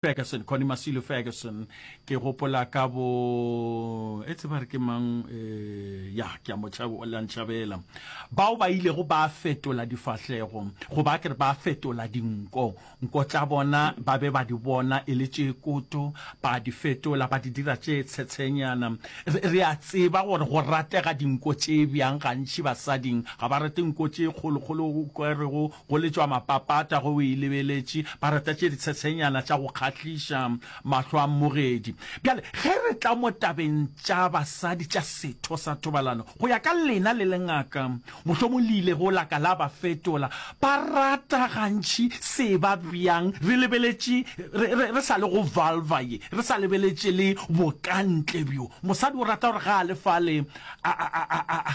Ferguson, Connie Masilu Ferguson, ke gopola ka bo e tseba re ke mang e ya ke a motsha o la ntshabela bao ba ile go ba fetola difahlego go ba ke ba fetola dinko nko tsa bona ba be ba di bona e le tše koto ba di fetola ba di dira tše tshetsenyana re a tseba gore go ratega dinko tše bjang gantši basading ga ba rate nko tše kgolokgolo go Go letšwa mapapata ge o e lebeletše, ba rata tše ditshetshenyana tša go kgahliša mahlo a mmogedi. Bjale, ge re tla mo tabeng tša basadi tša setho sa thobalano, go ya ka lena le le ngaka, mohlomong le ile go la ka la ba fetola. Ba rata gantši se e ba bjang re lebeletše, re, re, re sa le go vulva ye, re sa lebeletše le bokantle bjo. Mosadi o rata gore ga a le fale a, a, a, a, a,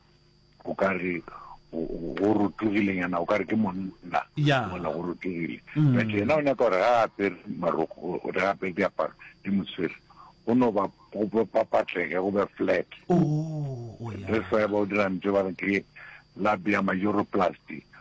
o ka re go rotogile nyana o ka re ke monna mona go rotogile mm. but yena o nyaka gore ga a apere maroko o re apere diaparo di moswere go no ba papatlege go be flat oh, oh, re sa ba o dirang tse ba re ke labia majoroplasty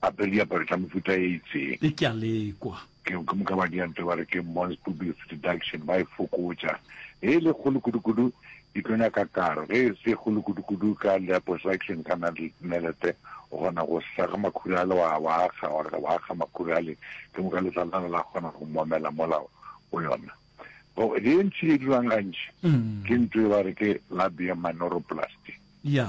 apere diaparo tša mofuta e itseng le ke a lekwa ke ke moka ba dianto ba re ke mons public deduction ba e fokotša e le kgolo kudu-kudu di tlo nyaka karo ge e se kgolo kudu-kudu ka liposuction ka na le melete o kgona go sega makhurale wa wa akga wa wa akga makhurale ke moka letsalana la kgona go momela mola o yona go le ntši e dirwang gantši ke ntwe ba re ke labium manoroplasty ya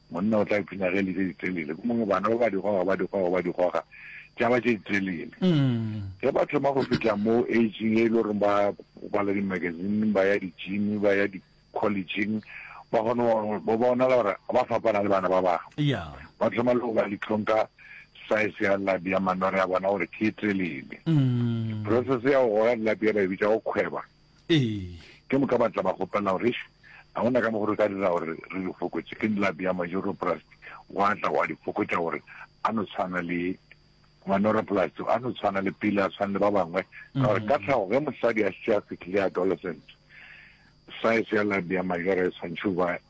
Monna o tla ipshina ge e le tše ditelele, gomme bana ba ba di goga, ba di goga, ba di goga, tša ba tše ditelele. Ge ba thoma go fihla mo aging ye e le goreng ba bala di-magazine, ba ya di-gym, ba ya di-collegeng, ba kgona go ba bonala gore ba fapana le bana ba bangwe. Ba thoma le go ba litlhong ka size ya labi ya manore a bona gore ke e telele. Process ya go goga dilapi ya ba e bitša go kgweba. Ee. Ke moka ba tla ba kgopela gore, Eish, ga go na ka mokgwa re ka dira gore re di fokotše. Ke nlapi ya manyoroplasti, gwa tla gwa di fokotša gore a no tshwana le manyoroplasti, a no tshwana le pele, a tshwane le ba bangwe. Ka gore ka tlhago, ge mosadi a šetše a fihlile adolescent, size ya lapi ya majora e tshwanetše go ba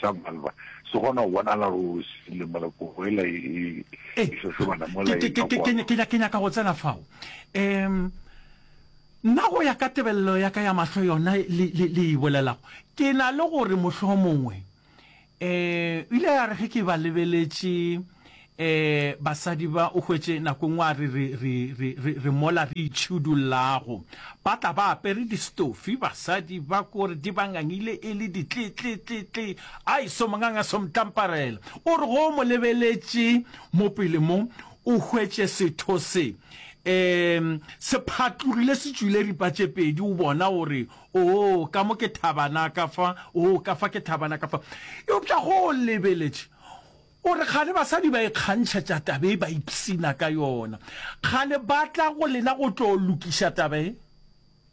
sa Malva se kgona go bonala ruri se file mola kogo ela e e hlohlobana e mola e ka kwa ke ke nyaka go tsena fao um nna go ya ka tebelelo ya ka ya mahlo yona le le le e bolelago ke na le gore mohlomongwe um ile ya re ge ke ba lebeletše Ee, basadi ba, o hwetše nako e nngwe a re, re, re, re, re, re mola re itšhidullago. Ba tla ba apere distofi, basadi ba kore di ba ngangile e le ditli-tli-tli-tli. Ai, somonganga somtlamparela. O re ge o mo lebeletše mo pele mo, o hwetše setho se, ee, se phatlogile se tšwile ripa tše pedi, o bona, o re, Oo, ka mo ke thabana ka fa, oo, ka fa ke thabana ka fa. Eupša ge o lebeletše, O re, Kgale basadi ba ikgantšhetša taba ye, ba ipshina ka yona. Kgale ba tla go lena go tlo lokiša taba ye.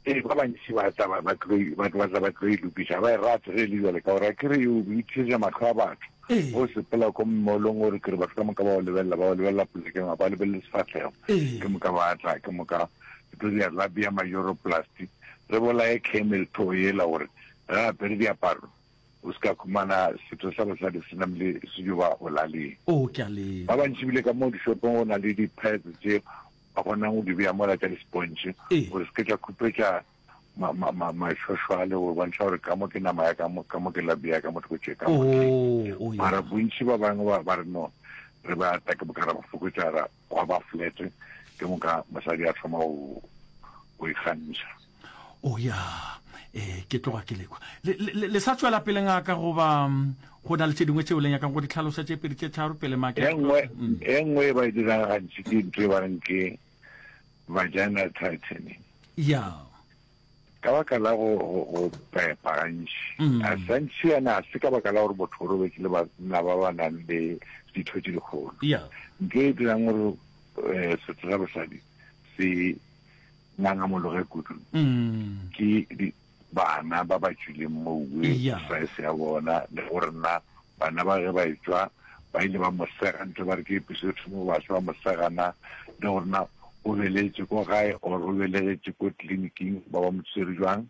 Ee, ba bantši ba tla ba tlo ba tlo e lokiša. Ga ba e rate ge e le bjale, ka gore a ke re o ithisetša mahlo a batho. O sepela ko mmolong, o re ke re batho ka moka ba o lebelela, ba o lebelela polekeng, ga ba lebelele sefahlego. Ke moka ba tla, ke moka ke tlo di arabia majoroplasti. Re bolaye camel toe yela gore ge a apere diaparo, O se ka khumana setho sa bosadi se namile sejoba bolaleng. Oo, ke a le. Ba bantši bile ka moo dishopong go na le di-pads tše ba kgonang go di bea mola tša dispontšhe Ee. gore se ke tša khupetša ma, ma, ma, mašošwale go bontšha gore ka mo ke nama ya ka mo, ka mo ke labi ya ka mo thoko tše ka mo ke. Oo, oo, ya. Mara bontši ba bangwe ba, ba re no, re be ata ke bo ka ra bo fokotša ra. gwa ba flat ke moka mosadi a thoma go go ikgantšha o ya eh ke tloga ke lekwa le, le, le sa tswela pele ngaka goba mm, go na le tse dingwe tseo le nyakang go di tlhalosa tše pedi tše tharo pele make e nngwe Mm. e nngwe e ba e dirang gantši ke ntho e ba reng ke vagina tightening ya Ka baka la go go pepa gantši, a sa ntšhiana ga se ka baka la gore botho bo robetše le banna ba ba nang le ditho tše dikgolo. Ntho e dirang gore setho sa bosadi se ngangamologe kudu ke bana ba ba tšwileng moweng, saese ya bona le gore na Bana ba ge ba etšwa, ba ile ba mo sega ntle ba re ke episode mo baswa ba mo sega na le gore na o belegetše ko gae or o belegetše ko tleliniking ba ba mo tswere jwang.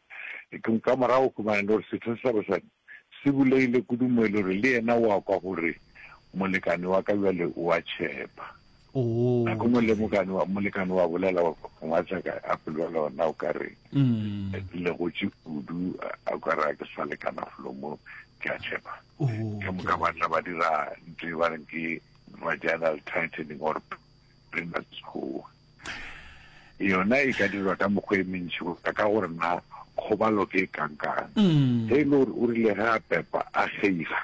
Ekong ka morago o humana le gore setho se sa basadi se bulegile kudu mo e le gore le yena o a kwa gore molekane wa ka bjale o a tšhepa. Nako ngwe le molekane wa bolela ngwatsaka a polwela ona o ka re legotse kudu a ka re a ke sa lekana folo mo ke a tshepa ke moka batla ba dira ntho e ba reng ke vaginal tightening or prematskoa yona e ka dirwa ka mokgwa e mentši go ka ka gore na kgobalo ke e kankang ge e le gore o rile ge a pepa a geiga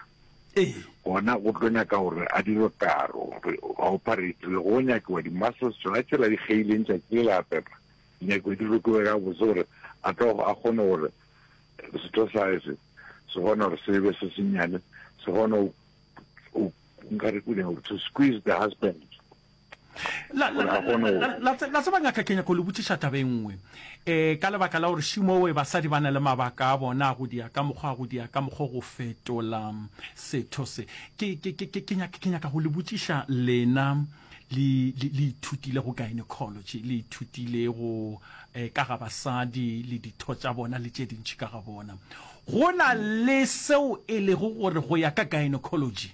Ee. Gona go tlo nyaka gore a dirwe karo, re a operate, le go nyakiwa di-muscles tšona tšela di kgeileng tšatši le la pepa, di nyakiwa di rokiwe gabotse gore a tlo a kgone gore setho sa gage se se kgone gore se be se senyane, se kgone go, nka re ke eng, to squeeze the husband. la tseba nyaka ke nyako le botšiša taba e nngwe um ka lebaka la gore šimowe basadi ba na le mabaka a bona a go dia ka mokgwa a go dia ka mokgwa go fetola setho se ke nyaka go le botšiša lena le ithutile go gynecology le ithutile go um ka ga basadi le ditho tša bona le tše dintšhi ka ga bona go na le seo e lego gore go ya ka gynecology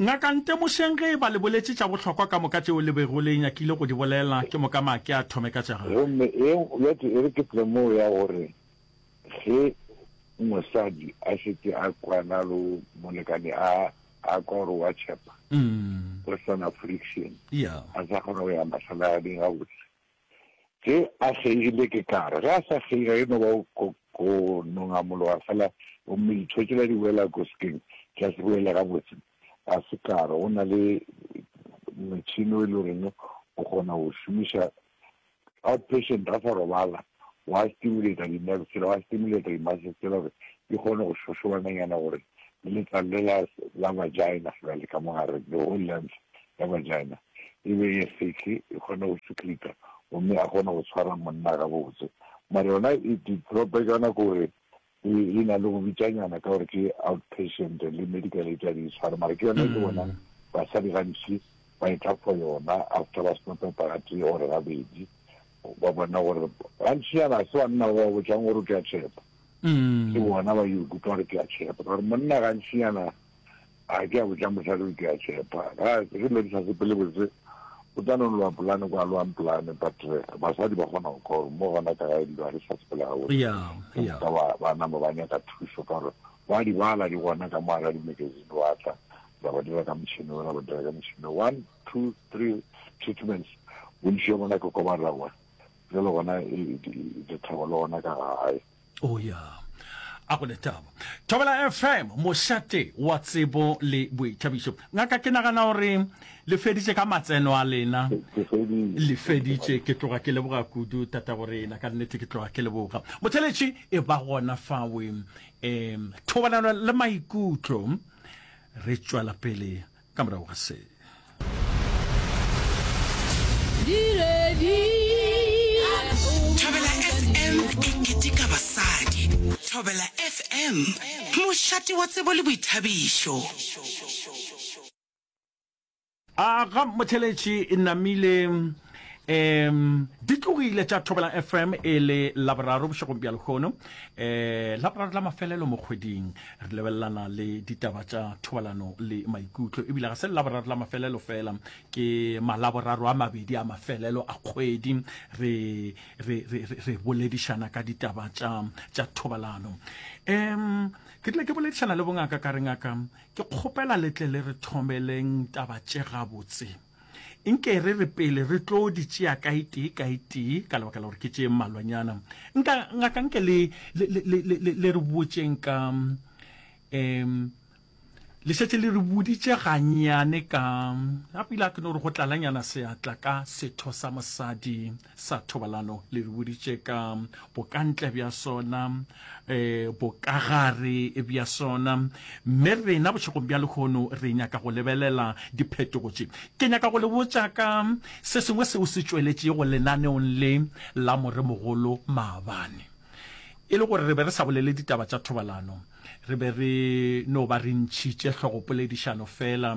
Ngaka ntemošeng ge eba le boletše tša bohlokwa ka moka tšeo le bego le nyakile go di bolela, ke moka ma ke a thome ka tša gagwe. Gomme e bjatše e re ke tlemo ya gore ge mosadi a šetše a kwana lo molekane a a kwa gore wa tšhepa, o swana friction, a sa kgona go ya mahlalaneng gabotse. Ge a kgeile, ke tla re, ge a sa kgeile, ga e no ba o ko, ko nongamologa fela gomme ditho tšela di wela koskeng, tša se boele gabotse. Ga se ka re go na le motšhene o e le goreng o kgona go o šomiša outpatient ga sa robala, wa stimulata di-nerve tsela, wa stimulata di-muscles tsela gore di kgone go šošobananyana gore le letlalo le la, la vagina, jwale ka mo gare, the whole length, ya bajana e be e sehle, e kgone go tšhuklika gomme a kgone go tshwara monna gabotse. Mara yona e develope jana ke gore e na le go bitšanyana ka gore ke outpatient le medical aid a di tshware mara ke yona e ke bonang basadi gantši ba e tla for yona after ba seno pepa gatee or gabedi ba bona gore gantši yana ga se banna ba ba botšang gore ke a tšhepa ke bona ba yo ikutlwa gore ke a tšhepa ka gore monna gantši yana a ke a botša mosadi o ke a tšhepa ga re le di sa sepele botse o tla no loa polane kwa loang polane but eh, basadi ba kgona go kgoro mo gona ka gae dilo ga re sa sepele ga boka ba nama ba nyaka thuso ka gore ba di bala di gona ka moa ga di-magazine wa tla ra ba dira ka motšhini o ra ba dira ka motšhini one two three treatments bontši yo bona ke kobarela gona jalo gona e, e, e, e thabo le gona ka gae Oh ya, a go letaba. Thobela FM, mošate wa tsebo le boithabišo. Ngaka, ke nagana gore le feditše ka matseno a lena. Le feditše, ke tloga ke leboga kudu tata go rena, ka nnete ke tloga ke leboga. Motheletši e ba gona fawe, um thobalano le maikutlo, re tšwela pele. ka morago ga se Thobela FM mošate wa tsebo le boithabišo. A ga motheletši e namile um di tlogile tša thobela fm e le laboraro bošegong bja lehono um laboraro la mafelelo mo kgweding re lebelelana le ditaba tša thobalano le maikutlo ebile ga se lelaboraro la mafelelo fela ke malaboraro a mabedi a mafelelo a kgwedi re, re, re, re, re boledišana ka ditaba tša, tša thobalano um ke tlile ke boledišana le bongaka ka re ngaka ke kgopela letle le re thomeleng taba tše gabotse Nke re re pele re tlo di tšea kae tee kae tee ka lebaka la gore ke tše mmalwanyana. Nka ngaka nke le le le le le le re botšeng ka um le šetše le re boditše ganyane ka a pele a ke no re go tlalanyana seatla ka setho sa mosadi. sa thobalano le re boditše ka bokantle bja sona um bokagare bja sona mme rena bošegong bja lehono re nyaka go lebelela diphetogo tše ke nyaka go le botša ka se sengwe seo se tšweletšego lenaneong le la moremogolo maabane e le gore re be re sa bolele ditaba tša thobalano re be re no ba re ntšhitše hlogopoledišano fela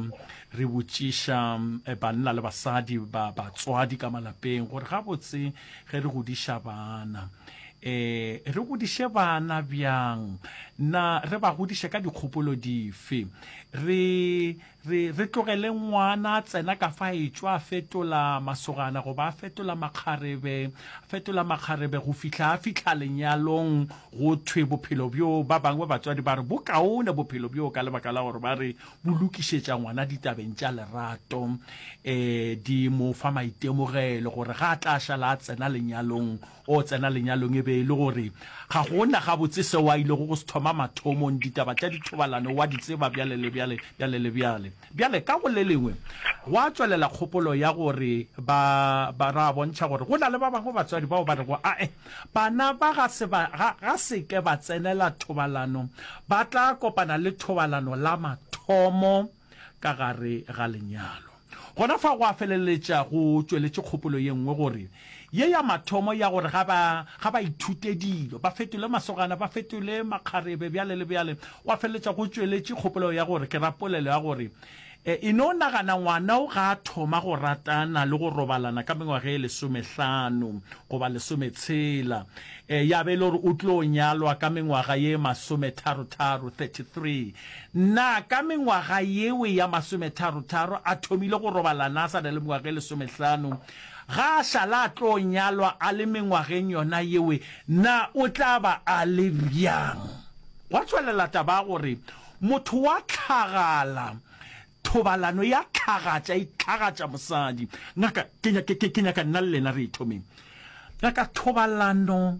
re botšiša eh, banna le basadi ba batswadi ka malapeng gore gabotse ge re godiša bana eh re godiše bana bjang na re ba godiše ka dikgopolo dife re Re, re tlogele ngwana a tsena ka fa etšwa a fetola masogana goba a fetola makgarebe, a fetola makgarebe go fihla a fihla lenyalong, go thwe bophelo bjoo, ba bangwe ba batswadi ba re bo kaone bophelo bjoo ka lebaka la gore ba re bo lokišetša ngwana ditabeng tša lerato, um di mo fa maitemogelo gore ga a tla šala a tsena lenyalong O tsena lenyalong e be e le gore ga go na gabotse seo a ilego go se thoma mathomong. Ditaba tša dithobalano o a di tseba bjale le bjale, bjale le bjale. Bjale, ka go le lengwe, gwa tšwelela kgopolo ya gore ba, ba, ra bontšha gore go na le ba bangwe batswadi bao ba rego, A-e, bana ba ga se ba, ga, ga se ke ba tsenela thobalano. Ba tla kopana le thobalano la mathomo. ka gare ga lenyalo. Gona fa go a feleletša go tšweletše kgopolo ye nngwe gore ye ya mathomo ya gore ga ba, ga ba ithute dilo, ba fetole masogana, ba fetole makgarebe, bjale le bjale, go a feleletša go tšweletše kgopolo ya gore, ke ra polelo ya gore, e no nagana ngwana o ga a thoma go ratana le go robalana ka mengwaga e lesomehlano goba lesometshela, ya be e le gore o tlo nyalwa ka mengwaga ye masometharo-tharo, 33, Na ka mengwaga yeo ya masometharo-tharo a thomile go robalana a sa na le mengwaga e lesomehlano? Ga a šala a tlo nyalwa a le mengwageng yona yeo, na o tla ba a le bjang? Gwa tšwelela taba ya gore motho wa hlagala, thobalano ya hlagaša, e hlagaša mosadi. Ngaka, ke nyaka nna le lena re e thomeng. Ngaka, Thobalano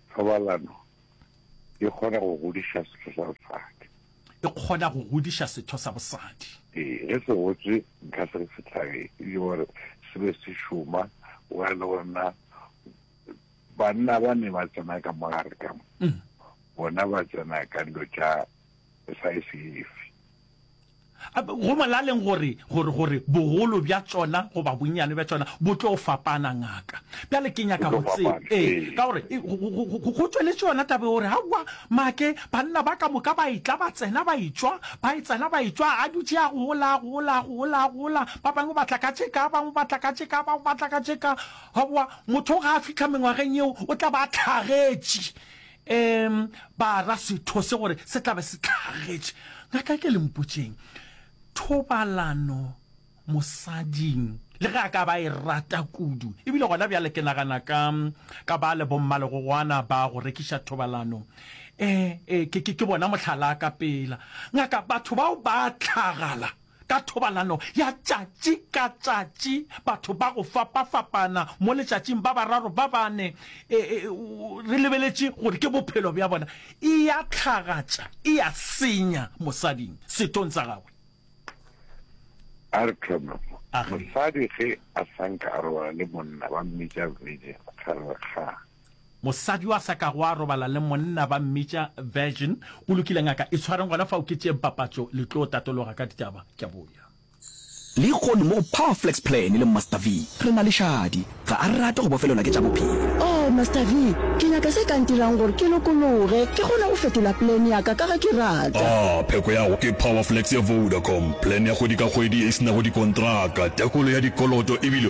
Thobalano e kgona go godiša setho sa bosadi. E kgona go godiša setho sa bosadi. Ee, ge se gotswe nka se re se tlage le gore se be se šoma wa le gona banna ba ne ba tsena ka mogare ka mo bona ba tsena ka dilo tša sa e sefe Go molaleng gore, gore, gore bogolo bja tšona goba bonnyane bja tšona bo tlo fapana, ngaka. Bjale ke nyaka go tseba, ee, ka gore go tšweletše yona taba gore, aowa, make, banna ba ka moka ba etla ba tsena ba etšwa, ba etsana ba etšwa, a dutše a gola, a gola, a gola, a gola, ba bangwe ba tla ka tše ka, ba bangwe ba tla ka tše ka, ba bangwe ba tla ka tše ka. Aowa, motho ge a fihla mengwageng yeo o tla ba a hlagetše. Eem, ba ra setho se gore se tla be se tlhagetše. Ngaka ke le mpotšeng, thobalano mosading le ge a ka ba e rata kudu, ebile gona bjale ke nagana ka ka ba le bommalegogoana ba go rekiša thobalano, ee, ee, ke, ke, ke bona mohlala ka pela. Ngaka, batho bao ba tlhagala. Ka thobalano ya tšatši ka tšatši, batho ba go fapafapana mo letšatšing, ba bararo, ba bane, e, e, re lebeletše gore ke bophelo bja bona, e ya tlhagatša, e ya senya mosading, sethong sa gagwe. A re thome mo. Mosadi ge a sa nka a robala le monna, ba mmitša virgin, ga re kgang. Mosadi wa sa kago a robala le monna ba mmitša virgin. Go lokile ngaka, itshwareng gona fao ke tšeeng papatšo le tlo tatologa ka ditaba. Ke a boya. Lehono mo go Power Flex Plan le Master V re na le šadi. Ga a rate go bofelelwa ke tša bophelo. Oh Master V, ke nyaka se ka ntirang gore ke lokologe ke kgone go fetola plan ya ka ka ga ke rata. Ah, pheko ya go ke Power Flex ya Vodacom, plan ya kgwedi ka kgwedi e se nago dikontraka, tekolo ya dikoloto e bile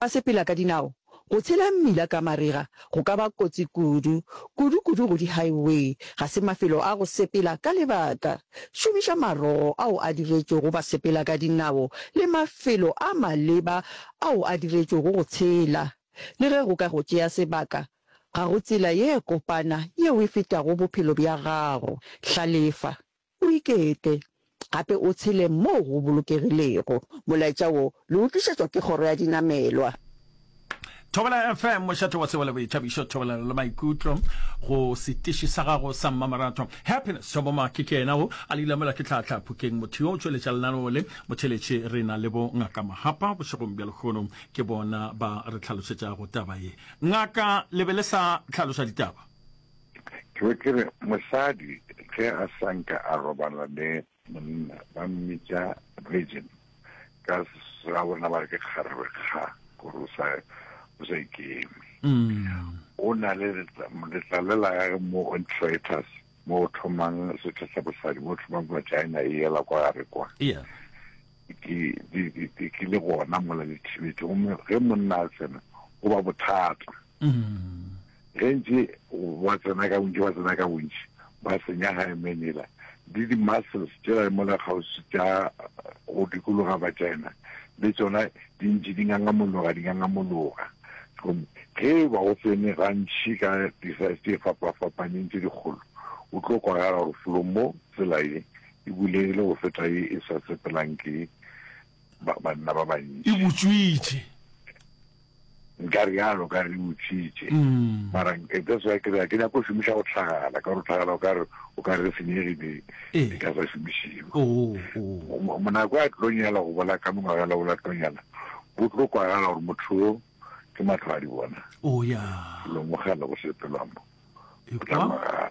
Basepela ka dinao, Go tshela mmila ka marega go ka ba kotsi kudu, kudu-kudu go di-highway. Ga se mafelo a go sepela ka lebaka. Šomiša marogo ao a diretšwego basepela ka dinao le mafelo a maleba ao a diretšwego go tshela. Le ge go ka go tšea sebaka, ga go tsela ye kopana yeo e fetago bophelo bja gago. Hlalefa. O ikete, gape o tshele moo go bolokegilego. Molaetša wo le o tlišetšwa ke Kgoro ya Dinamelwa. Thobela FM, mošate wa sebo le boithabišo, thobelelo le maikutlo go setiši sa gago sa mmamoratho. Happiness Tšhobomaki ke yena o a le ilamela ke tlhaatla phukeng, motho yo o tšweletša lenaneo le. Motheletši re na le bo Ngaka Mahapa bošegong bja lekgono, ke bona ba re tlhalošetšago taba ye. Ngaka, le be le sa hlaloša ditaba? Ke be ke re, Mosadi ge a sa nke a robala le monna, ba mmitša virgin, ka ga bona ba re ke kgarebe, kga, gore o sa, o sa ikeme. O na le letlalo la gage mo on traitors, mo o thomang setho sa bosadi, mo o thomang vagina e yela kwa gare kwa. Yeah. Ke, di, di, di, ke le gona mola le thibetše, gomme ge monna a tsena, go ba bothata. Ge ntše ba tsena ka bontši, ba tsena ka bontši, ba senya Hymenela le di-muscles tšela di mola kgauswi tša go dikologa vagina, le tšona di ntše di ngangamologa, di ngangamologa. Gomme ge e ba go tsene gantši ka di-size tše fapafapaneng tše dikgolo, o tlo kwa ga gore felo mo tsela ye e bulegile go feta ye e sa sepelang ke banna ba bantši. E butswitše. Nka realo, o ka re di utswitše. Mara eh, that's why ke re ke nyako šomiša go tlhagala, ka gore tlhagala o ka re o ka re senyege di eh. di ka sa šomišiwe. Oh, oh. Mo- Monako a tlo nyala go bola ka mengwagela o la tlo nyala, bo tlo kwagala gore motho o ke matlho a di bona. Oh, yeah. Lo mogala go sepelwamo. O tla Ekwa. mogala.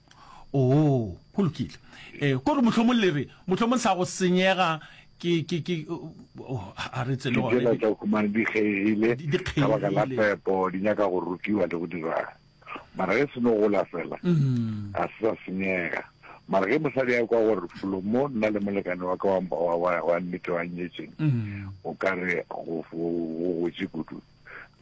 Oo, go lokile. E, ko re mohlomong le re, mohlomong sa go senyega ke ke ke oh, a re tsele gone dijela tsa khumane di kgegile Di- di ka baka la kgegile. pepo di nyaka go rukiwa le go dira mara ge se no gola fela Mm. a se sa senyega mara ge mosadi ya kwa gore folomo nna le molekane wa ka wa- wa- wa wa nnete wa nyetseng Mm. o ka re go go- go gotse kudu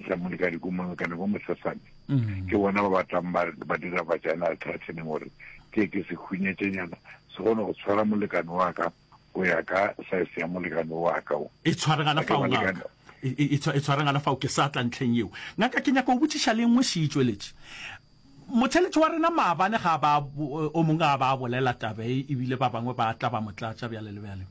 sa molekane ko molekane ko mosesane mm. ke bona ba batlang ba dira vagina tightening gore ke ke se khunyetsenyana se kgone go tshwara molekane wa ka go ya ka size ya molekane wa ka o e tshwaregana fa ngaka e, e, e, e tshwaregana fa o ke sa tla ntlheng eo ngaka ke nyaka o botsiša le nngwe se itsweletše motheletši wa rena maabane ga ba o mongwe ga ba bolela tabe ebile ba bangwe ba tla ba motlatša bjale le bjale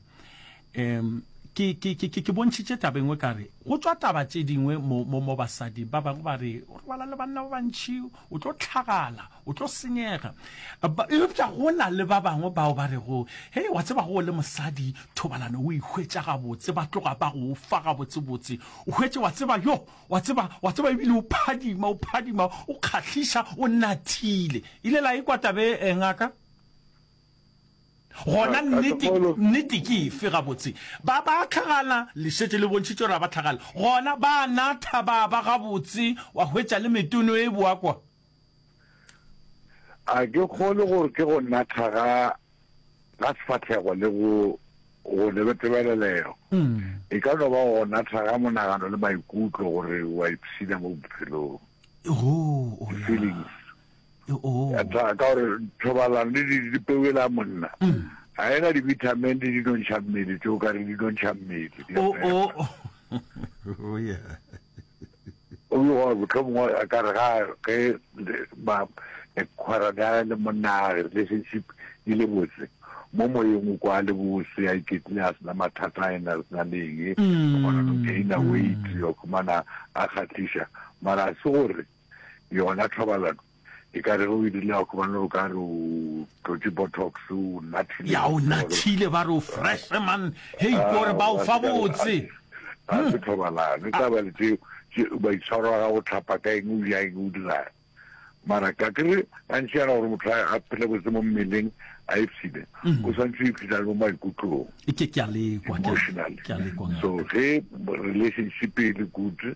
Em, ke, ke, ke, ke, ke bontšhitše taba engwe ka re go tšwa taba tše dingwe mo, mo, mo basadi ba bangwe ba re o robala le banna ba bantšhi o tlo tlhagala o tlo senyega Ba- eupša go na le ba bangwe bao ba rego hei wa tseba go o le mosadi thobalano o ihwetša gabotse ba tloga ba go fa gabotsebotse o hwetše wa tseba yo wa tseba wa tseba ebile o phadima o phadima o kgahliša o nathile ile la e kwa tabe eh, ngaka Gona nnete, nnete ke efe gabotse? Ba, ba a tlhagala, le šetše le bontšhitše gore ga ba tlhagale. Gona ba a natha, ba ba gabotse, wa hwetša le metono e boa kwa. A ke kgolwe gore ke go natha ga, ga sefahlego le go, go lebetebelelego. E ka no ba go natha ga monagano le maikutlo, gore wa ipshina mo bophelong. Hoo, o ya. Di-feelings. ya tshwana ka gore thobalano le di dipeo e la monna ga ena di-vitamin le dinontšha mmele tseo ka re dinontšha mmele o be gore botlhomongwe a ka re ga ge kgwarane ya le monna a relationship e le botse mo moyeng o kwa le bose a iketlile a sena mathata a ena re sena le eng o kgona go gaina weight o khumana a kgatlisa mara se gore yona thobalano e ka re ge o e dirile gobane o ka re o tlotse botox o nathile ya o nathile ba re o fresh man hei ah, kore ba o fa botse a se thobalano e taba le tseo baitshwaro a ga go tlhapa ka eng o ja eng o dirang mara ka kere gantši yana gore motho a phele botse mo mmeleng a epsile mhm. o santse o ipsitsa mo maikutlong emotionally so ge relationship e le good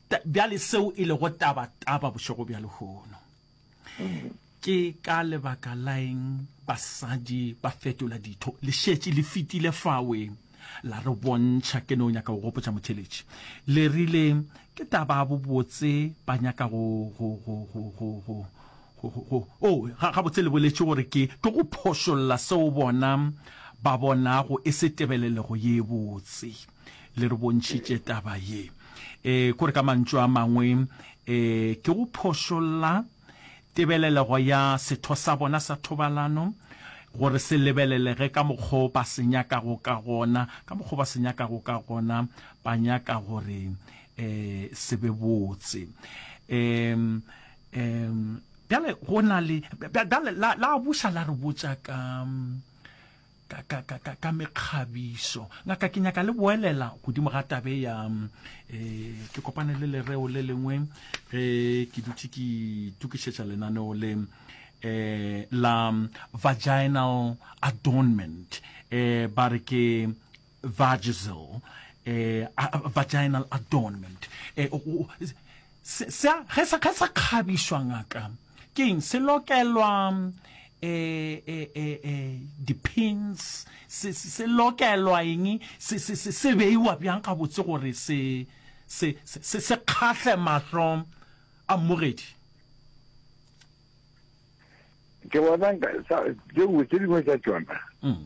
Bjale seo e lego taba taba bošego bja lehono, ke ka lebaka la eng basadi ba fetola ditho? Le šetše le fitile fawe la re bontšha. Ke no nyaka go gopotša motheletši, le rile ke taba ya bobotse ba nyaka go go go go go go go go go o ga gabotse le boletše gore ke ke go phošolla seo bona ba bonago e se tebelelego ye botse. le re bontšhitše taba ye e kore ka mantšu a mangwe um ke go phošolla tebelelego ya setho sa bona sa thobalano gore se lebelelege ka mokgwa o ba se nyakago ka gona ka mokgwa o ba se nyakago ka gona ba nyaka gore um se be botse um um bjale go na le bjale la buša la re botša ka ka, ka, ka, ka, ka mekgabiso ngaka ke nyaka le boelela godimo ga tabe ya um ke kopane le lereo le lengwe ge ke dutse ke itukišetša lenaneo le um la vaginal adornment um ba re ke vagisal eh, vaginal adornment eh, se sa kgabišwa ngaka ke eng se lokelwa eh, eh, eh, eh, depends se, se, se lokelwa eng se, se, se, se beiwa bjang gabotse gore se se, se, se, se kgahle mahlo a mmogedi ke bona tse dingwe tsa tsona mm.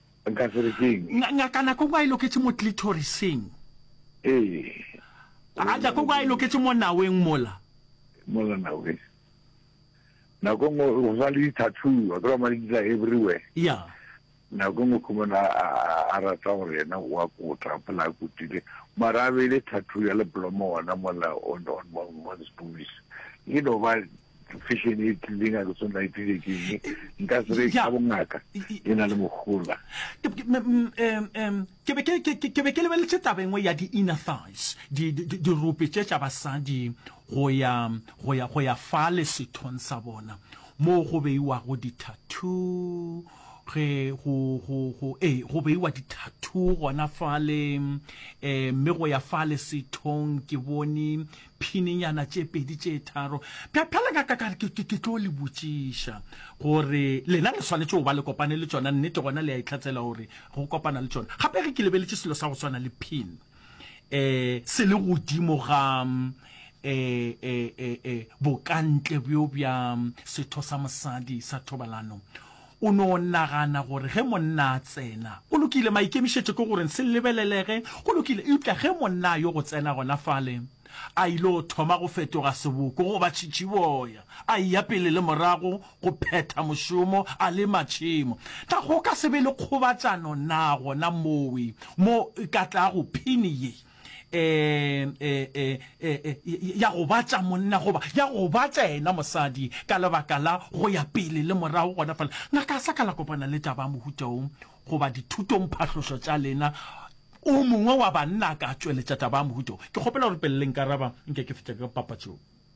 Nka se re keng? Nga, Ngaka Nakogo a e loketše mo clitorising. Ee. A Nakogo a e loketše mo naweng mola. Mola naweng. Nakong o go sa le di-tattoo, wa tseba madi di tla everywhere. Ya. Nakong o khumana a rata gore yena o a kota, phela a kotile. Mara a beile tattoo ya leblomo ona mola on, on, on, on his boobies. E no ba fashion e tlileng a ke tshwane la ipile ke eng nka se re ka bongaka e na le mogola ke be ke lebeletse taba engwe ya di-inner thighs dirope tše tša basadi go ya fa le sethong sa bona moo go beiwago di-tattoo ge go go go e go beiwa di-tattoo gona fale um mme go ya fale sethong ke bone phininyana tše pedi tše tharo bja phela ka ka ke ke ke tlo le botšiša gore lena le swanetše go ba le kopane le tšona nnete gona le a itlhatsela gore go kopana le tšona gape ge ke lebeletše selo sa go swana le pin eh se le godimo ga eh eh eh eh bokantle bjo bja setho sa mosadi sa thobalano O no nagana gore ge monna a tsena, go lokile, maikemišetšo ke gore se lebelelege, go lokile. Eupša ge monna a yo go tsena gona fale, a il'o thoma go fetoga seboko goba tšhitšhiboya, a eya pele le morago go phetha mošomo a le matšhemo, na go ka se be le kgobatšano na gona mowe mo e ka tlago phini ye? um ya go ba tša monna goba ya go ba tša ena mosadi ka lebaka la go ya pele le morago gona fela ngaka sa ka la kopana le taba mohutšaong goba dithutong phahlošo tša lena o mongwe wa banna ka tšweletša taba ya mohutšo ke kgopela gore pele le nkaraba nke ke fetša ka papatšong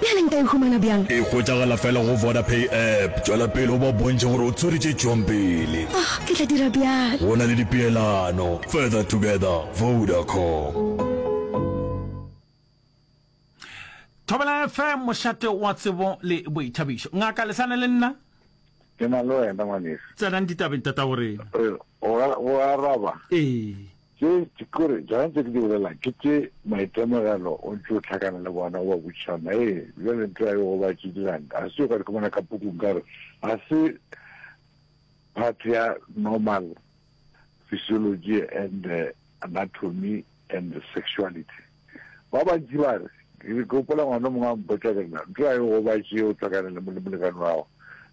Bjale nka e humana bjang? E hwetšagala fela go Vodapay app. Tšwela pele o ba bontšhe gore o tswere tše tšwang pele. Oh, ke tla dira bjalo. Go na le dipeelano. Further together, Vodacom. Thobela FM, mošate wa tsebo le boithabišo. Ngaka, le sane le nna? Ke na le wena ngwaneso. Tsenang ditabeng, Tatagorena. Re, o a, o a araba? Ee. Tše ke gore tsona tše ke di bolelago ke tše maitemogelo o ntše o hlakana le bona o ba botšiša ma ee bjale ntho ya yo go ba tše dirang ga se yo ka di komana ka pukung ka gore ga se part ya normal physiology and uh, anatomy and sexuality ba bantši ba re ke gopola ngwana mongwe a mpotša ke nna ntho ya yo go ba tše o hlakana le molekane wa gago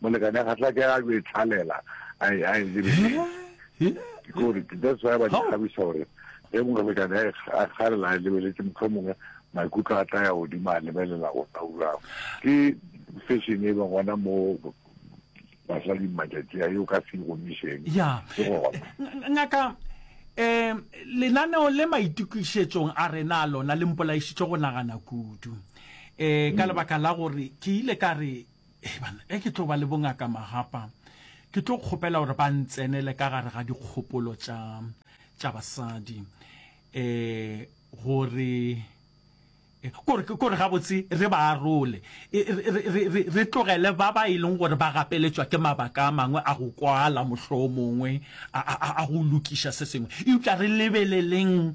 molekane ga tla ke a yo e tlhalela a e a e lebelele ke gore that's why ba di kgabisa gore ge molekane a e kgalela a e lebeletse motho mongwe maikutlo a tla ya godimo a lebelela go nna urago ke fashion e ba gona mo basadi matšatši a yo ka se gomišeng ya ke gona ngaka um lenaneo le maitokišetsong a rena a lona le mpolaišitše go nagana kudu um ka lebaka la gore ke ile ka re Ee, bana, ge ke tlo ba le bongaka magapa, ke tlo kgopela gore ba ntsenele ka gare ga dikgopolo tša tša basadi um gore kore kore gabotse re ba arole re tlogele ba ba e leng gore ba gapeletšwa ke mabaka a mangwe a go kwala mohloo mongwe a go lokiša se sengwe eupša re lebeleleng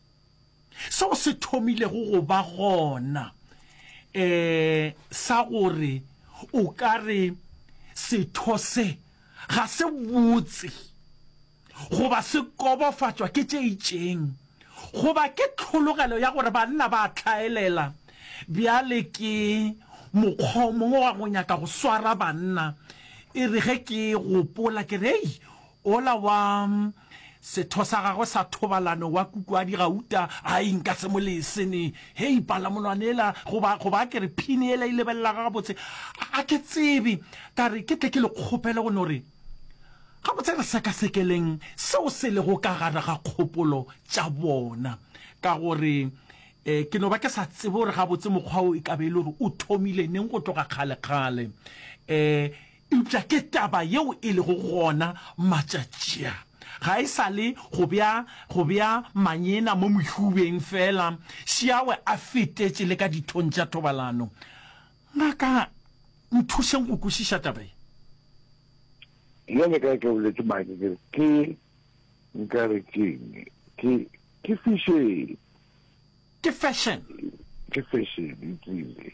seo se thomilego go ba gona eh sa gore o ka re setho se ga se botse goba se kobofatšwa ke tše itšeng goba ke tlhologelo ya gore banna ba tlhaelela bjale ke mokgwa o mongwe wa go nyaka go swara banna e re ge ke gopola ke re ei Ola wa setho sa gagwe sa thobalano wa kukwadi gauta a e nka se mo lese ne. Hei, palamolwana ela, goba, goba a ke re phini ela e lebelelaga gabotse. A, a ke tsebe. Ka re ke tle ke le kgopele go no re, Gabotse re sekasekeleng seo se lego ka gare ga kgopolo tša bona. Ka gore, e, ke no ba ke sa tsebe gore gabotse mokgwa wo e ka be e le gore o thomile neng go tloga kgalekgale. E, Eupša ke taba yeo e lego gona matšatši a, ga e sa le go bea, go bea manyena mo mohubeng feela, šiawe a fetetše le ka dithong tša thobalano. Ngaka, nthušeng go kwešiša taba ye. Bjale ka ke boletše maake ke re, ke, nka re ke'ng, ke, ke fešene. Ke fešene. Ke fešene, ke ile.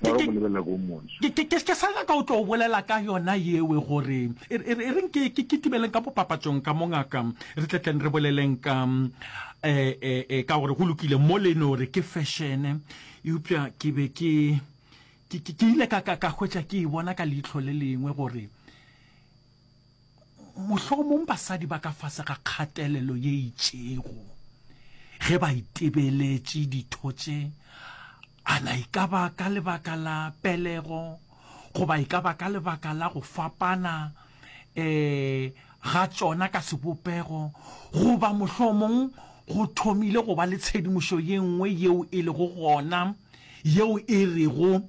Ba re o mo lebelela ko o montso. Ke, ke, ke, ke sa nyaka o tlo o bolela ka yona yewe gore e, e, e reng ke, ke, ke tubeleng ka mo papatsong ka mo ngaka re tle tleng re boleleng ka e, e, e, ka gore go lokile mo le no re ke fešene eupša ke be ke ke, ke, ke ile ka, ka, ka hwetša ke e bona ka leihlo le lengwe gore Mohlomong basadi ba ka fase ga kgatelelo ye itšego ge ba itebeletše ditho tše, ana e ka ba ka lebaka la pelego goba e ka ba ka lebaka la go fapana um ga tšona ka sebopego, goba mohlomong go thomile go ba le tshedimošo ye nngwe yeo e lego gona yeo e rego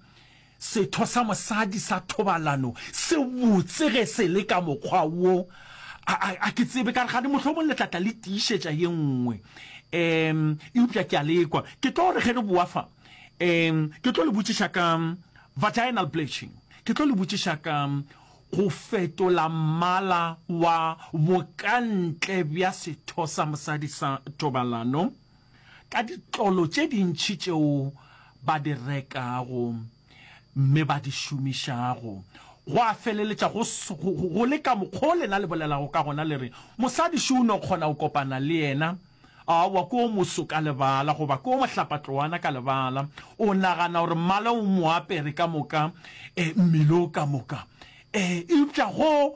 Setho sa mosadi sa thobalano se botse ge se le ka mokgwa wo. A, a, a ke tsebe ka re gane mohlomong le tlatla le tiišetša ye nngwe. Um, eupša ke a lekwa. Ke tlo re ge re boa fa, um, ke tlo le botšiša ka vaginal bleaching. Ke tlo le botšiša ka go fetola mmala wa bokantle bja setho sa mosadi sa thobalano. ka ditlolo tše dintši tšeo ba di rekago mme ba di šomišago. Gwa feleletša go, go, go le ka mokgwa lena le bolelago ka gona, le re, Mosadi šo o no kgona go kopana le yena. Aowa, ke o moso ka lebala, goba ke o mohlapatloana ka lebala. O nagana gore mmala o mo apere ka moka, e, mmele o ka moka. E, eupša go,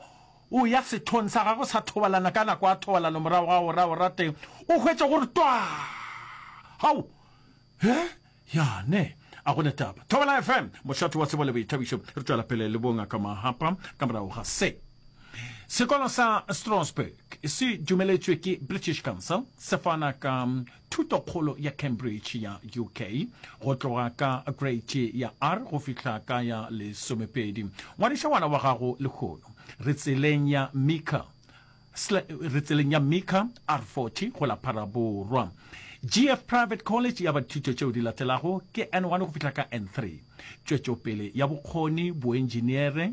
O ya sethong sa gagwe sa thobalano ka nako ya thobalano morago ga go raya o rate, o hwetše go re twaa! Hau! He! Ya ne! A go na taba. Thobela FM, mohlato wa tsebo le boithabišo. Re tšwela pele le Bongaka Mahapa ka morago ga se. Sekolo sa Strasbourg se dumeletšwe ke British Council se fana ka Thutokgolo ya Cambridge ya UK, go tloga ka Greiti ya R go fihla ka ya Lesomepedi. Ngwadiša ngwana wa gago lehono. Re tseleng ya Mika, sla, re tseleng ya Mika, R40, go la Phara Borwa. GF Private College ya bathuto tšeo di latelago ke N1 go fihla ka N3. Tšwetšopele ya bokgoni, boentšiniere,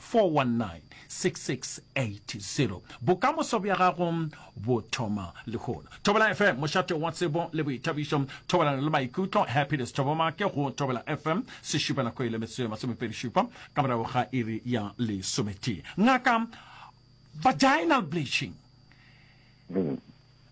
419-6680 Bokamoso bja gago bo thoma lehono. Thobela FM, mošate wa tsebo le boithabišo, thobalano le maikutlo. Happiness Thobomake go Thobela FM, sešupanako e le metsotso e masomepedi šupa ka morago ga iri ya lesometee. Ngaka, vaginal bleaching. Mm.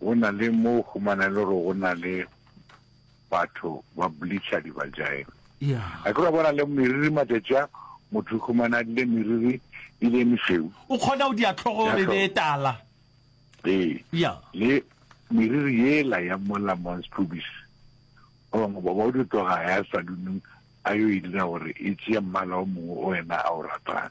go na le mo o humana e le gore go na le batho ba bleacher dibajayeng a ke ra bona le meriri matšatši a motho o humana a dile meriri e le meseu o kgona go diatlhogo re be tala ee le meriri yela ya mola mons pubis ba bangwe ba o di tloga ya salunung a yo e dira gore e tšea mmala o mongwe o wena a o ratang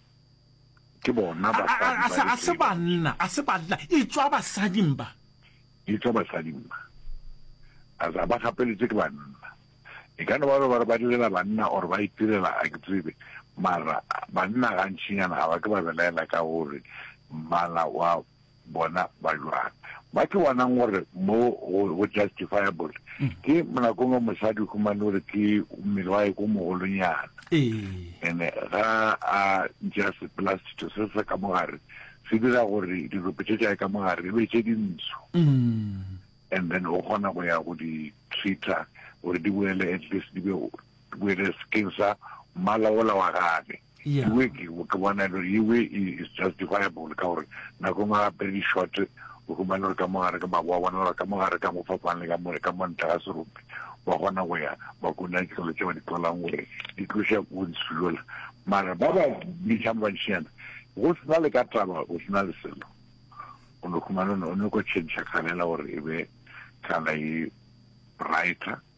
Ke bona basadi ba re se ba nna. A se banna. E tšwa basading ba. E tšwa basading ba. A za ba gapeletše ke banna. E ka no ba ba re ba direla banna or ba itirela a ke tsebe. Mara banna gantšinyana ga ba ke ba belaela ka gore mmala wa. bona ba jwang. Ba tlo bonang gore mo go justifiable ke monakong wa mosadi humane gore ke mmele wa eko mogolonyana ene ga a ntša sepela setho se se ka mogare se dira gore dirope tše tša e ka mogare e be tše dintsho mm. and then o kgona go ya go di treater gore di boele at least di be boele skin sa mmala ola wa gage Yeah. Iwe ke o ke bona le iwe is justifiable ka gore nako ngwe gape di short o humane gore ka mo gare ka mabo wa bona gore ka mo gare ka mo fapane ka mo ka mo ntle ga serope ba gona go ya ba kona ditlolo tse ba di tlolang gore di tloša go ntshulola mara ba ba bitšang bantšhinyana go sena le ka taba go sena le selo o no humane o ne ko change kgalela gore e be kana e brighter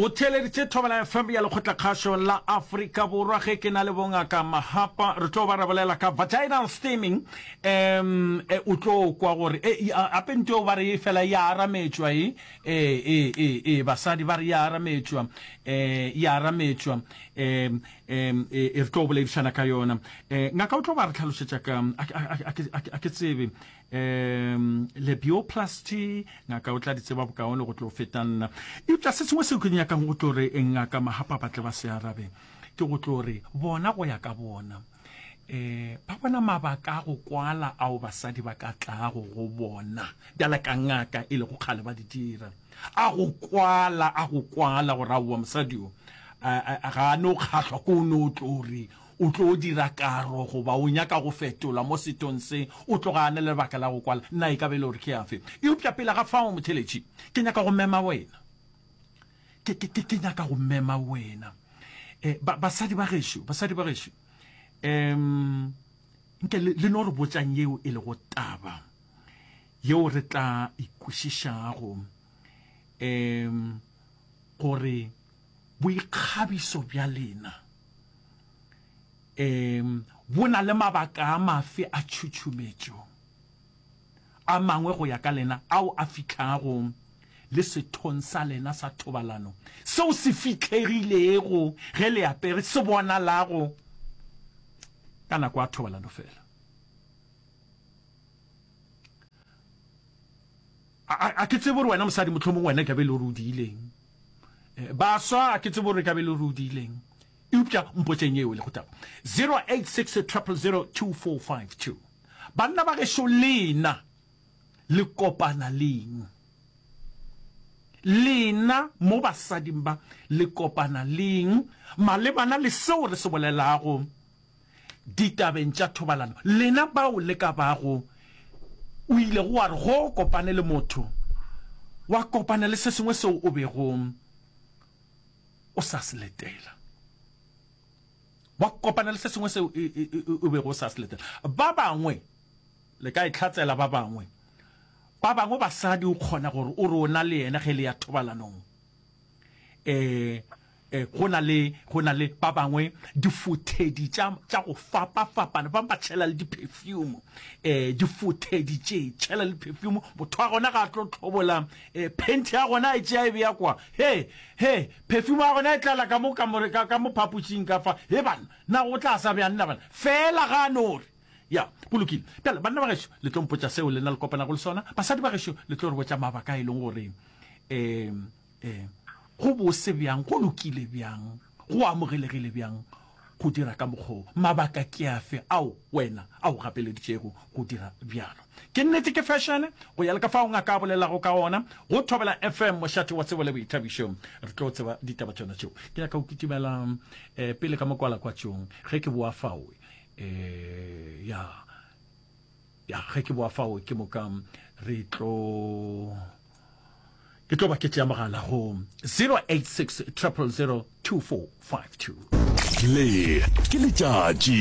O theeleditše Thobalano FM ya Lekgotlakgašo la Afrika Borwa ge ke na le bongaka Mahapa re tlo ba re bolela ka vaginal steaming um e o tlo kwa gore e ape nto ba re fela ya arametšwa e e e e e basadi ba re ya arametšwa e ya arametšwa e e e re tlo boledišana ka yona e ngaka o tlo ba re tlhalošetša ka a ke tsebe um lebioplasty ngaka o tla di tseba bokaone go tlo feta nna eupša se sengwe seo ke nyakang go tlo re ngaka magapa ba tle ba se arabe ke go tlo re bona go ya ka bona eh ba bona mabaka a go kwala ao basadi ba ka tlago go bona bjala ka ngaka e lego kgale ba di dira a go kwala a go kwala gore aowa mosadi o ga a no kgahlwa ko o no tlo re O tlo dira karo goba o nyaka go fetola mo sethong se o tloga a na le lebaka la go kwala? Na e ka ba e le gore ke a fe? Eupša pele ga fao, motheeletši, ke nyaka go mema wena. Ke, ke, ke, ke nyaka go mema wena. E, ba, basadi ba gešo, basadi ba gešo, em, nke le, le no re botšang yeo e lego taba yeo re tla ikwešišago, em, gore boikgabiso bja lena um bo na le mabaka a mafe a tšhutšumetšo a mangwe go ya ka lena ao a fihlago le sethong sa lena sa thobalano seo se fitlhegilego ge le apere se bonalago ka nako ya thobalano fela? A, a, a ke tsebe gore wena mosadi, mohlomong wena e ka be le gore o diileng. Eh, baswa, a ke tsebe gore e ka be le gore o diileng. Eupša mpotšeng yeo le go taba. 0860002452. Banna ba gešo lena le kopana leng? Lena mo basading ba le kopana leng malebana le seo re se bolelago? ditabeng tša thobalano, lena bao le ka bago o ile go wa re go o kopane le motho, wa kopana le se sengwe seo o bego o sa se letela. Wa kopana le se sengwe seo e, e, e, o bego o sa se letela. Ba bangwe le ka itlhatsela ba bangwe. Ba bangwe basadi o kgona gore o re o na le yena ge le ya thobalanong. Eh, Go na le, go na le ba bangwe, difothedi tša, tša go fapafapana, ba bangwe ba tšhela le diphefiyumu, um difothedi tše, tšhela le phefiyumu, motho wa gona ga a tlo tlhobola um phenti ya gona a e tšea e beya kwa, he, he, phefiyumu ya gona e tlala ka mo, ka mo, ka, ka mo phapošing ka fa, he banna, na go tla sa bjang na banna, feela ga a no re, ya, go lokile. Bjale, banna ba gešo, le tlo mpotša seo lena le kopanago le sona, basadi ba gešo, le tlo re botša mabaka a e leng gore um Ee, go bose bjang, go lokile bjang, go amogelegile bjang go dira ka mokgwa wo? Mabaka ke afe ao wena a go gapeleditšego go dira bjalo? Ke nnete ke fešene? Go ya le ka fao ngaka a bolelago ka gona, go Thobela FM, mošate wa tsebo le boithabišo, re tlo tseba ditaba tšona tšeo. Ke nyaka go kitimela um pele ka mokwalakwatšong ge ke boa fao. Um, ya. ya ge ke boa fao ke moka re tlo ke tlo ba ke tšea mogala go 086 000 2452 le ke letšatši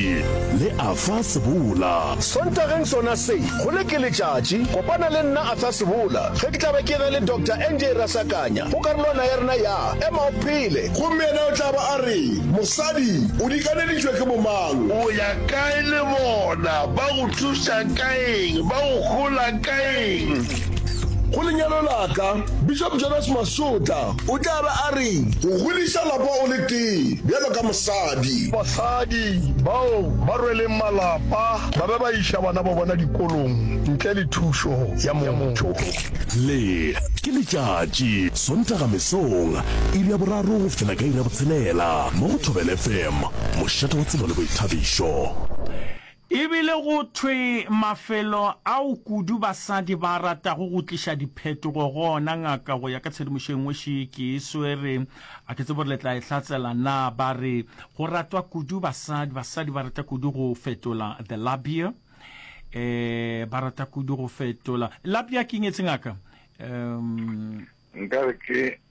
le a fa sebola sontageng sona se go le ke letšatši kopana le nna a fa sebola ge ke tla be ke ge le dr nj rasakanya go karolwana ya rena ya ema o phele gomme yena o tla ba a re mosadi o dikaneditšwe ke bomang o ya Ka e le bona, ba go thuša ka eng? Ba go hlola ka eng? Go lenyalo la ka, Bishop Jonas Masotla o tla be a re, Go godiša lapa o le tee bjalo ka mosadi. Basadi bao ba rweleng malapa ba be ba iša bana ba bona dikolong ntle le thušo ya motho. Le ke letšatši, Sontaga mesong, iri ya boraro go fihlela ka iri ya botshelela mo go Thobela FM. mošate wa tsebo le boithabišo. E bile go thwe mafelo ao kudu basadi ba a ratago go tliša diphetogo go ona ngaka go ya ka tshedimošo e nngwe še ke e swere, a ke tsebe gore le tla e hlatsela na, ba re go ratwa kudu basadi, basadi ba rata kudu go fetola the labia, um ba rata kudu go fetola, labia ke eng etse ngaka? Um. Nkare ke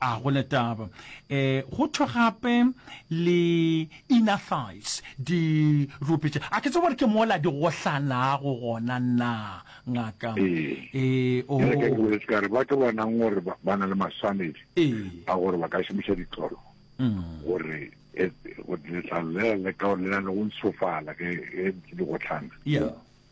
A go na taba. E, go thwe gape le inner thighs, di rupetše. A ke tsebe gore ke mola di gohlanago gona na, ngaka? Ee. E, o. Bjale ke a ke boletse ka re batho ba nang gore ba ba na le maswanedi Ee. a gore ba ka šomiša ditlolo gore e, go letlalo le le ka le na le go ntshofala ge ge di gotlhana. Yeah.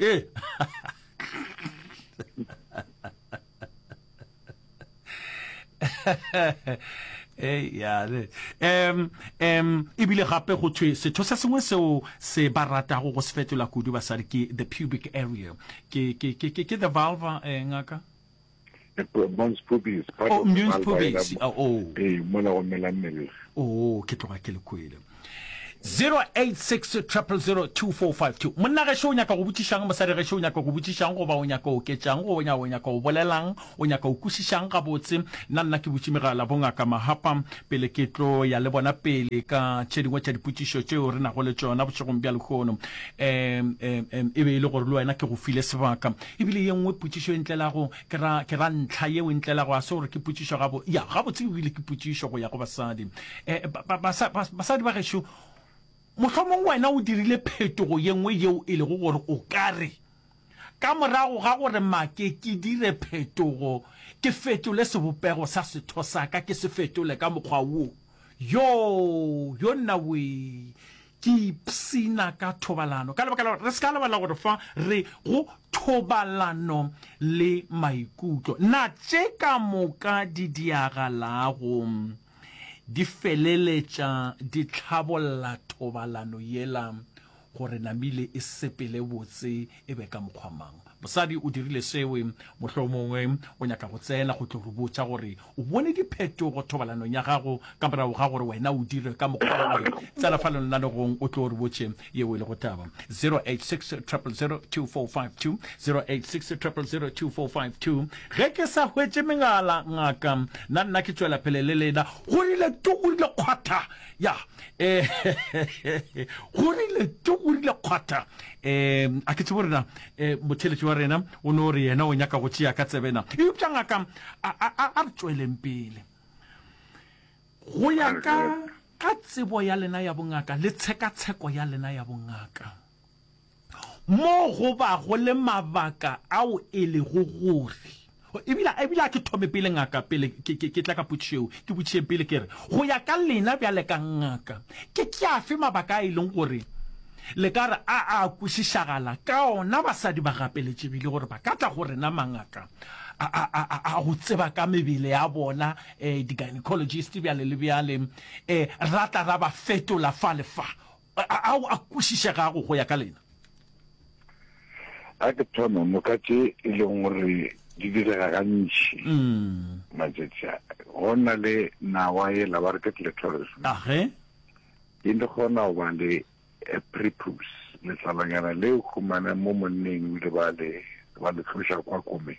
ee ei yale em em ebile gape go thwe setho se sengwe seo se ba ratago go se fetola kudu basadi ke the pubic area ke ke ke ke the vulva eh, ngaka Mons pubis, part oh, of the vulva pubis. Oh, oh. Ee, mola go mela mmele. Oh, ke tloga ke le kwele. 0860002452 monna ge o nyaka go botšišang mosadi ge o nyaka go botšišang goba o nyaka o oketšang go nya o nyaka o bolelang o nyaka o kwešišang gabotse nna nna ke botši megala bongaka mahapa pele ke tlo ya le bona pele ka tše dingwe tša dipotšišo tšeo re nago le tšona bošegong bja lehono um e be e le gore le wena ke go file sebaka E bile ye nngwe potšišo e ntlelago, ke ra, ke ra ntlha yeo e ntlelago, ga se gore ke potšišo gabo, ya, gabotse e bile ke potšišo go ya go basadi. E, ba, ba, basa, bas, basadi ba gešo, mohlomong wena o dirile phetogo ye nngwe yeo e lego gore o ka re, Ka morago ga gore make ke dire phetogo, ke fetole sebopego sa setho sa ka, ke se fetole ka mokgwa wo. Yoo, yonnawee! Ke ipshina ka thobalano ka lebaka la gore re se ka lebala gore fa re go thobalano le maikutlo, na tše ka moka di diagalago di feleletša di tlhabolla thobalano yela gore namile e sepele botse e be ka mokgwa mang? Mosadi o dirile seo. Mohlomongwe o nyaka go tsena go tlo re botša gore o bone diphetogo thobalanong ya gago ka morago ga gore wena o dire ka mokgwa woe. Tsena fa lenalegong o tlo re botše yeo e lego taba. 0860002452 0860002452 Ge ke sa hwetše megala, ngaka, na nna ke tšwela pele le lena? Go rile tu, go rile kgwatha. Ya, eh, go rile tu, go rile kgwatha. Eh, a ke tsebe gore na E, motheletši wa rena o no re yena o nyaka go tšea ka tsebena eupša ngaka a, a, a, a re tšweleng pele go ya ka ka tsebo ya lena ya bongaka le tshekatsheko ya lena ya bongaka mo go bago le mabaka ao e lego gore Ebile, ebile a ke thome pele, ngaka, pele ke, ke, ke tla ka potšišo yeo, ke botšišeng pele ke re, go ya ka lena bjale ka ngaka, ke, ke afe mabaka a e leng gore le ka re a a kwešišagala ka ona basadi ba gapeletšegile gore ba ka tla go rena mangaka a, a, a, a, a go tseba ka mebele ya bona, eh, di-gynecologist bjale le bjale, eh, ra tla ra ba fetola fa le fa. A, ao a kwešišegago go ya ka lena? A ke thome, moka tše e leng gore di direga gantši matšatši a, go na le nawa yela ba re ke clitoris, Age. e le kgona go ba le a prepuce, letlalonyana leo humana mo monneng ebile ba le ba le tloša kwa komeng.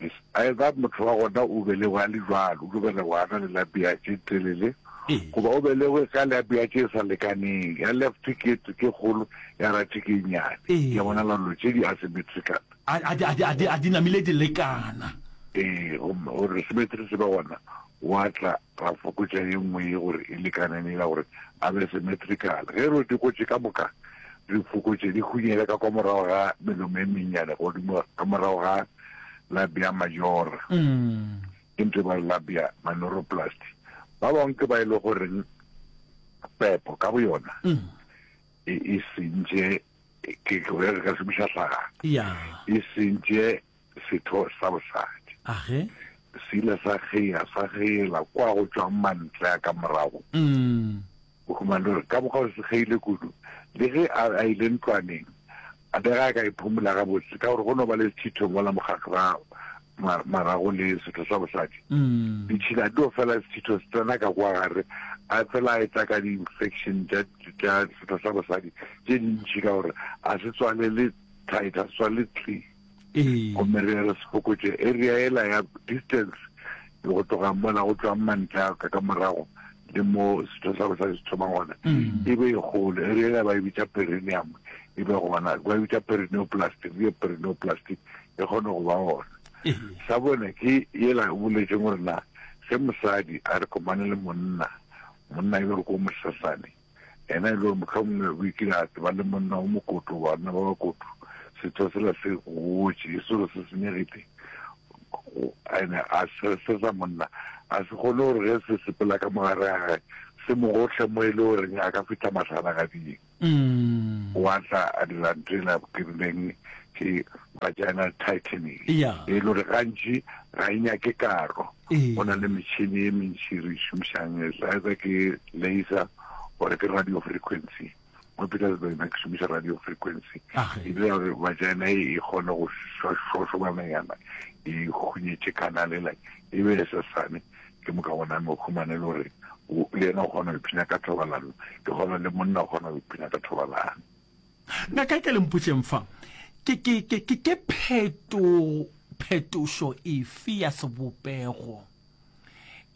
Is either motho wa gona o belegwe a le jwalo, o tlo belegwa a na le labia tše telele, goba o belegwe ka labia tše sa lekaneng, ya left ke ke kgolo, ya right ke e nnyane. Ke a bona la lo tše di asymmetrical. A, a, a, a, a di namile di lekana. Ee, gomme gore symmetry se be gona, wa tla ra fokotša ye nngwe ye gore e lekane le yela gore a be symmetrical. Ge re di gotše ka moka, re fokotše di hunyele ka kwa morago ga melomo e mennyane godimo, ka morago ga. labia majora ke ntho e ba re labia manoroplasty ba bangwe ke ba e le goreng pepo ka bo yona e, e sentše ke re ka šomiša hlaga e sentše setho sa bosadi se ile sa kgea sa kgeela kwa go tšwang mantle a ka morago mm. O humane gore ka mokgwa o sekgeile kudu, le ge a a ile ntlwaneng, a bega a ka e phumola gabotse ka gore go no ba le sethitho mola mokgakga ma, marago le setho sa bosadi. Ditšhila di no fela, sethitho se tsena ka kwa gare, a fela a eta ka di-infection tša, tša setho sa bosadi tše dintši ka gore a se tswalele tight, a se tswalele clean. Gomme re re se fokotše area yela ya distance go tloga mola go tšwang mantla ka ka morago le mo setho sa bosadi se thoma gona e be e golo area yela ba e bitša perineum e be gona ba e bitša perineoplastic e perineoplastic e kgone go ba gona sa bone ke yela o boletseng gore na ge mosadi a re komane le monna monna e be re ko mosasane Yena e le gore mohlomongwe o ikile a ba le monna o mokoto, banna ba bakoto, setho sela se gotše, e se gore se senyegile, ene a se se sa monna a se kgone gore ge se sepela ka mogare ga gae se mo gohle mo e le goreng a ka fitlha matlhana ga ding mm. wa tla a dira ntho e la kirileng ke vagina tightening e le gore gantši ga e nyake karo Go na le metšhini e mentši re šomišang e sa etsa ke laser gore ke radio frequency mo Petersburg na ke šomiša radio frequency ebile gore vagina e kgone go šošobananyana e hunyetše kanalela e be e sesane ke moka gona me humane le gore le yena o kgona go iphina ka thobalano ke kgona le monna o kgona go iphina ka thobalano Ngaka e ka le mpotšeng fa, ke, ke, ke, ke, ke pheto, phetošo efe ya sebopego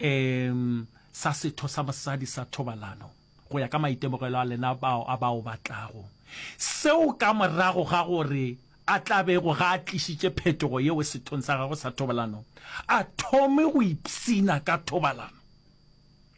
um sa setho sa mosadi sa thobalano go ya ka maitemogelo a lena bao a bao batlago seo ka morago ga gore a tlabego ga a tlišitše phetogo yeo sethong sa gagwe sa thobalano a thome go ipsina ka thobalano?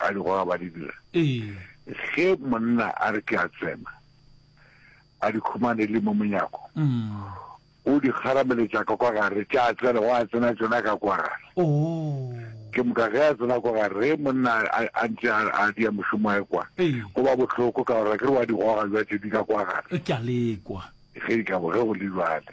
a di goga ba di dira ge monna a re ke a tsena a di khumane le mo monyako o di kgarameletša ka kwa gare tša a tsena go a tsena tsena ka kwa gare ke moka ge a tsena kwa gare ge monna a ntse a di ya mošomo a kwa go ba bohloko ka gore ke re wa di goga jwa tše di ka kwa gare ke a lekwa ge di ka bo ge go le jwale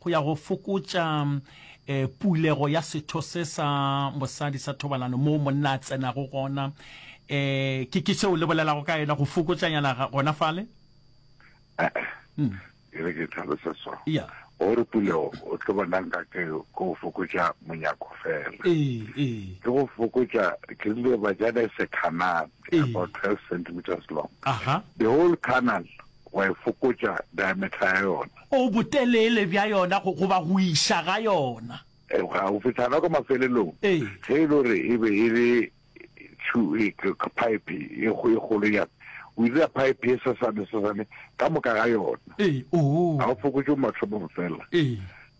go ya go fokotša e, pulego ya setho se sa mosadi sa thobalano moo monna a tsenago gona e, ke ke seo le bolelago ka yena go fokotšanyana gona fale hmm. ke re ke tlhalosa so gore pulego o tlo bonang ka ke go fokotša monyako fela ke go fokotša ke rile bajana e se canal about twelve centimeters long the whole canal wa e fokotša diameter ya yona. O botelele bja yona goba go iša ga yona. Eupša go fihla gona kwa mafelelong, ge e le gore e be e le phaephe e kgolo yana, o dira phaephe e sesane-sesane ka moka ga yona. Ga o fokotše mathomo fela.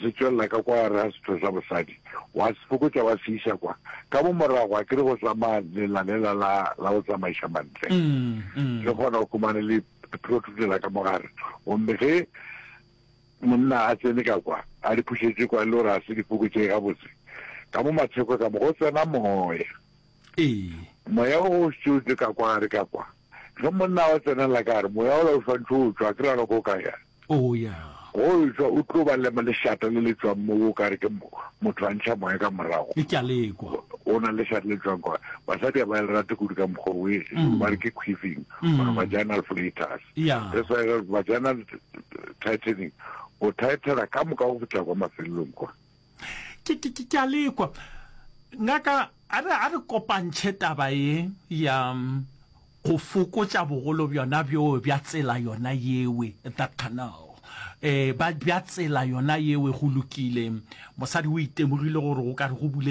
se tšwelela ka kwa gare ga setho sa bosadi, wa se fokotša wa se iša kwa ka mo morago, akere go tsamaya lela lela la, la go tsamaiša mantle, le kgona go humane le protruded la ka mo gare, gomme ge monna a tsene ka kwa, a di phušetše kwa e le gore ga se di fokotšege gabotse, ka mo matheko ka mo go tsena moya. Ee. Moya o o šetše o tše ka kwa gare ka kwa. Ge monna wa tsenela ka gare, moya ola o swantše o tšwa, akere ga go ka ya? O ya. Ge o tšwa, o tlo ba lema lešata le le tšwang mo o ka re ke motho a ntšha moya ka morago. Ke a le kwa. O na le lešata le tšwang kwa. Basadi ga ba le rate kudu ka mokgwa o, ba re ke queefing, or vaginal flatus. Ya. That's why vaginal tightening, o tightela ka moka go fihla kwa mafelelong kwa. Ke, ke, ke, ke a lekwa. Ngaka, a re, a re kopantšhe taba ye ya mm, go fokotša bogolo bjona bjo bja tsela yona yewe, that canal. Eh, ba, bja tsela yona yewe, go lokile. Mosadi o itemogile gore go ka re go bulegile.